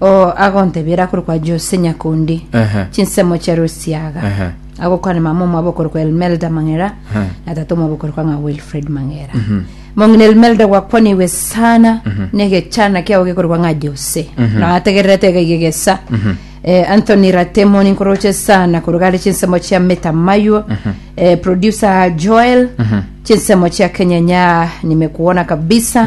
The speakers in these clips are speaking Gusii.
Oo agontebiera akorokwa Jose Nyakundi, Ehe. chinsemo chia Rosiaga. Ehe. Agokwana mama omwabo okorokwa Elmelda Mang'era Ehe. na tata omwabo okorokwa ng'a Wilfred Mang'era. Mong'ina Elmelda gwakwanigwe sana negechana kiao gekorokwa ng'a Jose. Na ategererete iga iga egesa. Eh, Anthony Ratemoni nkoroche sana koruga are chinsemo chia Meta Maywo. Eh, producer Joel chinsemo chia Kenyenya nimekuona kabisa.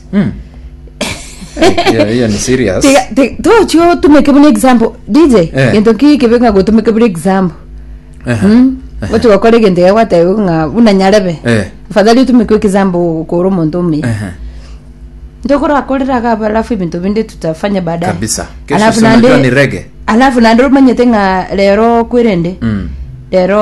Hiyo- hiyo ni serious Tiga- ti- tochia otumeke buna example dj Eh. gento ki kebe ng'a gotumeke buna example Aha. Mm. gochi gokora egento iga gwateba ng'a buna nyarebe Eh. afadhali otumeke example okora omonto omuya Aha. ntokorakoreraga alafu ebinto binde tutafanya baadaye kabisa kesho Alafu si unajua nande- ni rege alafu nande omanyete ng'a rero kwerende Mm. rero